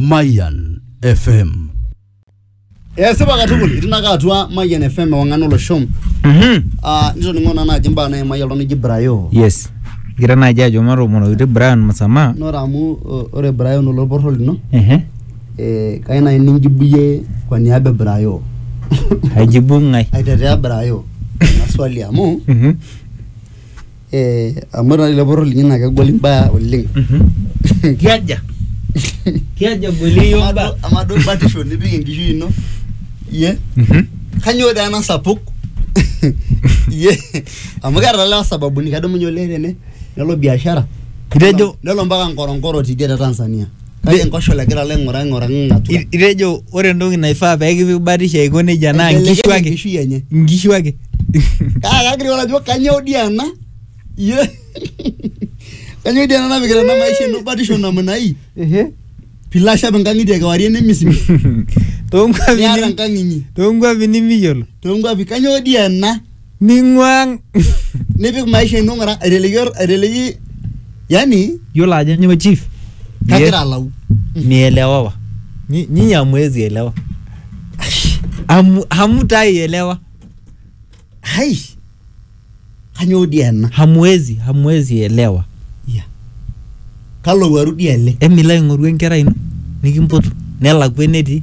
Mayan FM. esipa katukul itinaka atua mayian fm ewang'an olosho Mhm. Ah, nitoning'o naa naaji mbaa naimai oltung'ani oji brayo yes gira naaji ajo matomonokiti brian musama nore amu o- ore brayo noloporro lino Ehe. eh, kai nai ninjibuyie kwa niaba e brayo aijibu ng'ae aitetea brayo ina swali amu Mhm. Eh, amu ore lelo poror linyi naa kegol imbaa oleng. Kiaja. Kiaja egoli iyiook Amaa mbaa. duo- amaa duo batisho nipik enkishui ino iyie kanyoo dee ena sapuk iyie amu keeta lewa sababuni kedumunye olee tene nelo biashara Itejo- nelo mpaka nkoronkoro tidie te Tanzania kake enkoshola egira alo aing'uraa aing'uraa ng'atua I- itejo ore entoki naifaa pee kipik batisho aiko nejia naa Aibelekeny nkishu ake enkishui enye nkishu ake kaa kagira ore ajo kanyoo dii ena Ye- kanyoo dii ena napikita ena maisha ino batisho namna hii pilo ashap inkang'itie kewarie nemisimi toonkuapi niata ni- enkang inyi toonkuapi nimiyiolo toonkuapi kanyoo dii ena ning'uang nipik maisha ino ng'ura aiteleki or- aiteleki yani yiolo ajo nyoo chief kagira alau mielewawa Nyi- nyinyi hamwezi elewa Hamu- hamutaielewa hai kanyoo dii ena hamwezi hamwezi elewa Ya. kalo waru dii ele emilo aing'oru enkerai ino nikimpotu nelakua enetii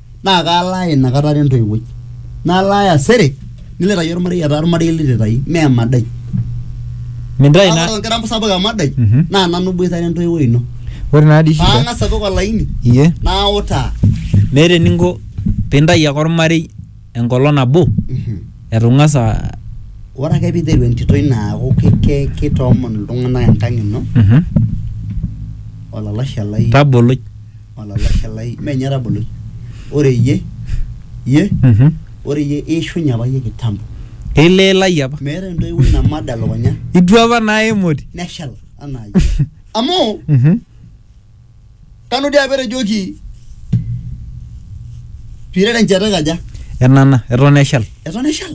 naa kalaaya inakata are entoiwuoi nalaaya sere nilitayu ormarei etaa ormarei lititai mme emadai mintae kake ina ore orkira sapuk emadai Mhm. naa nanu iboitare entoiwuoi ino ore naa dii shida paang'as apik olaini iye nautaa meeta eninko pintayu ake ormarei enkolong nabo Mhm. etu ing'as a ore ake piiteru entito ino aaku ki- ki- kitoomon iltung'anak enkang ino Mhm. olalashe lai tabolo olalashe lai mee ninye etaboloi ore iyie iyie Mhm. ore iyie iishunye apa iyie kitambo ileelai apa meeta entoiwuoi namada elukunya itu apa naa emoti neshal anaa iyie amu Mhm. kanu dii apa etejoki piirere enchata kaja enana eton eshal eton eshal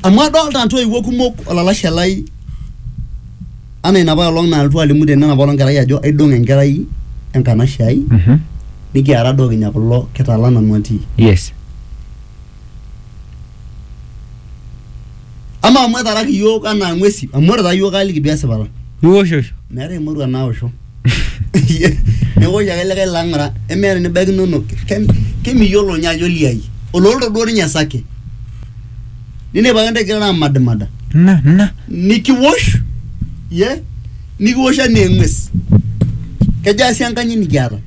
amu adolta ntoiwuo kumok olalashe lai anaa inapa olong nalotu alimu tene enapa olong kerai ajo aidong enkerai enkanashe ai Mhm. nikiara doo kinya kulo kitala nanu atii yes Amaa amu etaraki iyiook anaa ng'uesi, amu ore taa iyiook kaaliki duo esipata. Iwoshosho. Meetae emurua naosho. Neosh ake likae laa ng'ura emeeta enibaikinono. Ke- Kemiyiolo ninye ajo liai. Oloolto duo ninye esake. Ninepu ake intae igirara amadimada. Ina ina. Nikiwosh ye nikiwosh anaa eng'ues. Kejaa sii enkanyit nikiata?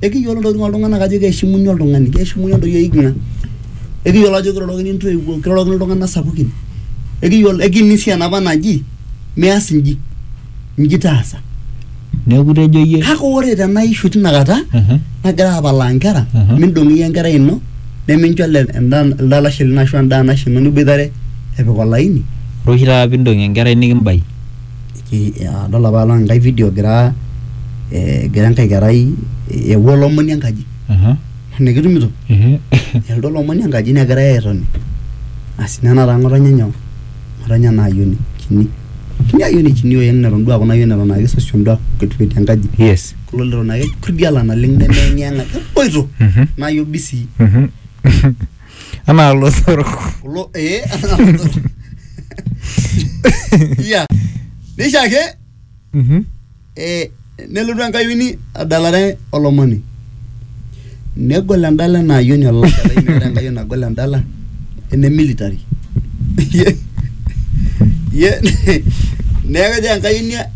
Ekiyiolo ntokitin oltung'anak ajo keishimuni oltung'ani, keishimuni entoyie eiking'a, ekiyiolo ajo kirorokini intoiwuo, kirorokini iltung'anak sapukin, ekiyiolo ekini sii enapa naji mias inji, inji taasa. Neeku itejo iyie Kake ore tena ishu tina kata Mhm. nagira apalaa inkera, Mhm. mindong iyie enkerai ino nemincho ele enda elde alashe lino ashu endaa nashe ino niboitare epik olaini. ore oshi taata piindong enkerai nikimbai. adol apa along enkae video egira eh, egira enkae kerai eewuo olomoni enkaji Aha. nikitumito Ehe. elotu olomoni enkaji negirae airony asi nena taa ng'otonye nyoo ng'otonye ena ayioni kini kini ayioni kini oyeng neton duo aaku ina ayioni eton ake sosion duo aaku ketuetie enkaji yes kulo leton ake kurdiala naleng nemeyeng'iyeng'a eboito Mhm. nayo bisii Mhm. anaa lotorok kulo ee ya nisha ake Mhm. eh, nelotu enkayioni adalare olomoni negol endala ena ayioni olashe lai meeta enkayioni nagol endala ene military ye ye neeku ejo enkayioni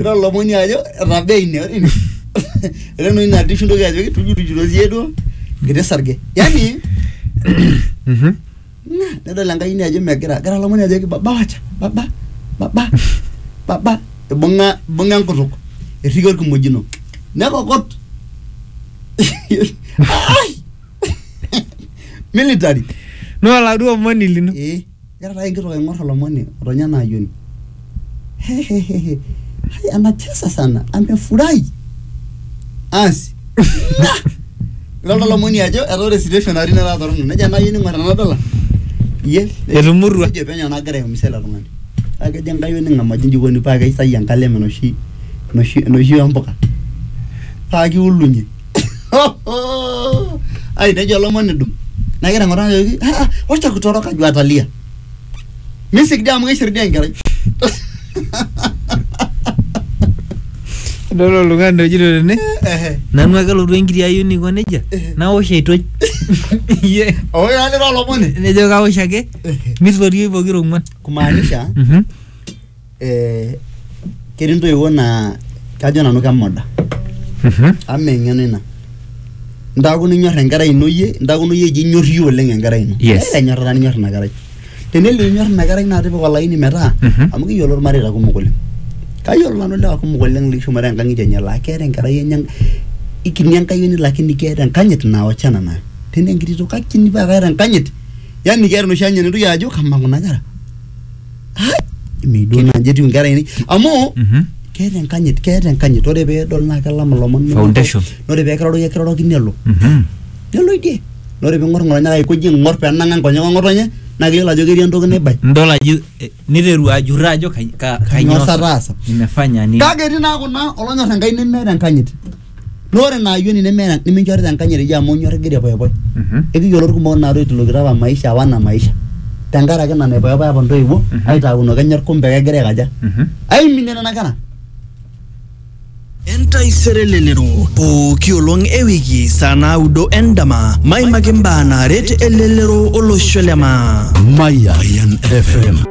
ira olomoni ajo etabaa ine ore ine ore enoshi natii oshi intoki ajoki tujutujuro siye duo kiti sarge yani Mhm. na, nedol enkai ine ajo megira egira olomoni ajoki baba wacha baba baba baba ibung'a ibung'a enkutuk erriki orkimojino nekokot Ai! military no oladuo omoni lino eh Egira taa enkitok aing'or olomoni otonya ena ayioni. Hehehehe. Hai anacheza sana. Amefurahi. Asi. Nah! Idol taa olomoni ajo etaa ore situation natii netaa torrono. Nejo ena ayioni ing'or ena dollar. Iye. Etumutua. Nejo penyo nagira aiumiza ele tung'ani. Paa kejo enkai ening'amaji inji ikoni paa keisai enkalem enoshi enoshi enoshi oo mpuka paa kiulunye. ai nejo olomoni dum naa kegira ng'oraa ajoki "Ah, ah, wacha kutoroka juu atalia misik dii amu keishir dii enkerai idol oltung'ani ojito tene Ehe. nanu ake lotu enkiti ayieu niko nejia nawosh aitoj Iye. oo ira lira olomoni nejo kawosh ake Ehe. mitorioi pokira ong'uan kumaanisha Mhm. Eh, ketii intoiwuo naa kajo nanu kemoda amu mee eng'eno ina intaaku ninyor enkerai ino iyie intaaku iyie eji inyor iyie oleng enkerai ino Yes. Keeta enyorrata ninyor ina kerai tenelo inyor ina kerai naa tipika olaini metaa Mhm. amu kiyiolo irmareita kumok oleng kayiolo nanu ilewa kumok oleng loishumare enkang'itie enye laa keeta enkerai enye ikini enkayioni lakini keeta enkanyit naa wachana nayo tena enkiti toki kakini paa keeta enkanyit yani keeta enoshi anyit nintoki ajo kamaa kuna kera Eme duo naaji etiu inkera ainei amu Mhm. keeta enkanyit keeta enkanyit ore peedol naa kelam ilomon nelo- Foundation. ore peekiroroki ekiroroki nelo Mhm. nelo idie Na ore ping'or ng'otonye kake aikoji aing'or penang'a nkonyek eng'otonye naa keyiolo ajo ketii entoki naibai Nidol ajo eh, niteru ajurro ajo kai- ka- Kainyoo sa taasa? nimefanya nini. kake etii naa kuna olonyor enkai nemeeta enkanyit Naa ore ina ayioni neme- niminchorita enkanyit iyie amu inyor igira aipoipoi. Mhm. Ekiyiolo ilkumok naatoitilokito apa maisha apa ena maisha tenkaraki ina naipoipoipa apa intoiwuo Mhm. aitauno kenyor kumbe kegira aikaja? Mhm. Aiminie nena kera. Entaisere elelero pooki olong e wiki saa naudo endama maimaki mbaa naaret elelero olosho le maa. Mayan FM.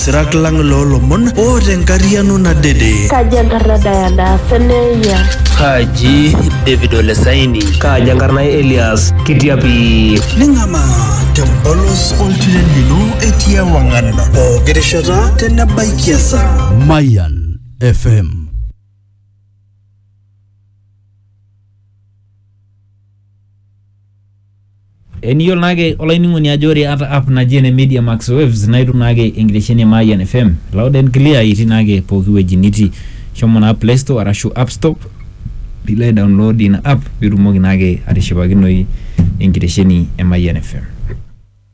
sirak lang loolomon o tenkariano nadede. Kaji enkarna Diana Seneia? Kaji David Olesaini? Kaji enkarna Elias Kitiapi? Ning'ama tempolos oltiren lino etii ewang'an pooki rishata tenebaiki esaa. Mayan FM. Eniyiolo naake olainining'oni ajo ore ata app naji ene Media Max Waves naa itum naake enkitesheni e Mayian FM loud and clear itii naake pooki wueji nitii. Shomo naa Play Store arashu App Store piilo ai download ina app piitumoki naake atishipakinoyu enkitesheni e Mayian FM.